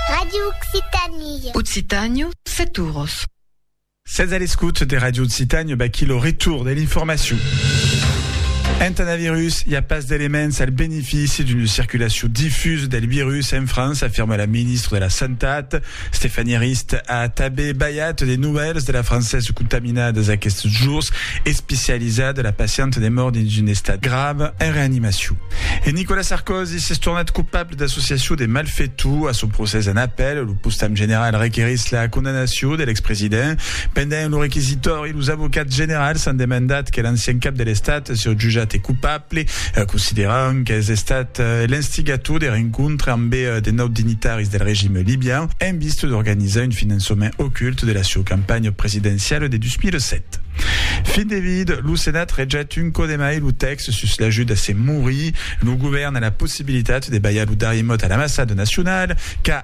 Radio Occitanie. Occitània, Saturos. Sètz a l'escòut de Radio Occitània, baquí lo retour de l'informacion. Entà un virus, i a pas d'elements al benefici d'una circulacion difusa del virus en França, afirma la ministra de la Santat. Stéphanie Arist a tanben balhat de novèls de la Française contaminadas aquests jours, especializat de la pacienta de mòrt dins un estat grave en reanimacion. E Nicolas Sarkozy s'es tornat copable d'associacion de malfetor. A son procès en apèl, lo postam general requerís la condamnacion de l'expresident pendent lo requisitori. Los avocats generals an demandat que l'ancian cap de l'Estat siá jutjat cupable, considerant qu'es estat l'instigator de rencontre ambe de naut dignitaris del regime libian en vista d'organizar un finançament ocult de la sieu campanha presidenciala de 2007. Fin de vid, lo Senat rejat un còp de mai lo tèxt sus l'ajut a se morir. Lo govèrn a la possibilitat de balhar lo darrier mot a l'ambassada nacionala qu'a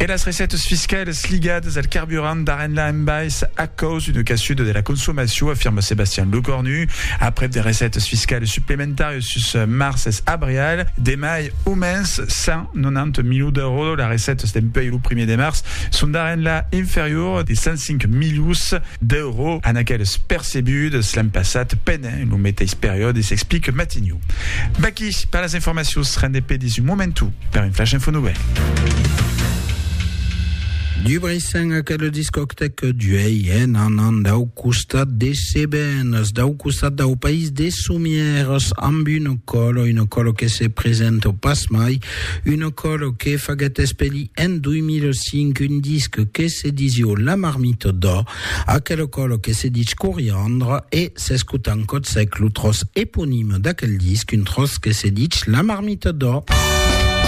E las recètas fiscalas ligadas al carburant d'Arenla en bais a caus d'una caçuda de la consomacion, afirma Sebastian Lecornu. Aprèp de recètas fiscalas suplementàrias sus març es abrial, de mai o mens 190 milions d'èuros, las recètas dempuèi lo primièr de març son d'Arenla inferior de 105 milions d'èuros a n'aquelas percebudas l'an passat. En lo meteis periòde s'explique Matignon. Vaqui per las informacions, rende pedis un momentu per un flash info novèl. Du Brissain a quel discòctec duei en anant dau costat de Sebènes, dau costat dau país de Somières, amb una còlo, una còlo que se presenta pas mai, una còlo que faguèt espelir en 2005 un disc que se disiu La Marmite d'Or, Aquel còlo que se dich Coriandre e s'escota en Còtsec lo tròç eponime d'aquel disc, un tròç que se dich La Marmita d'Ò.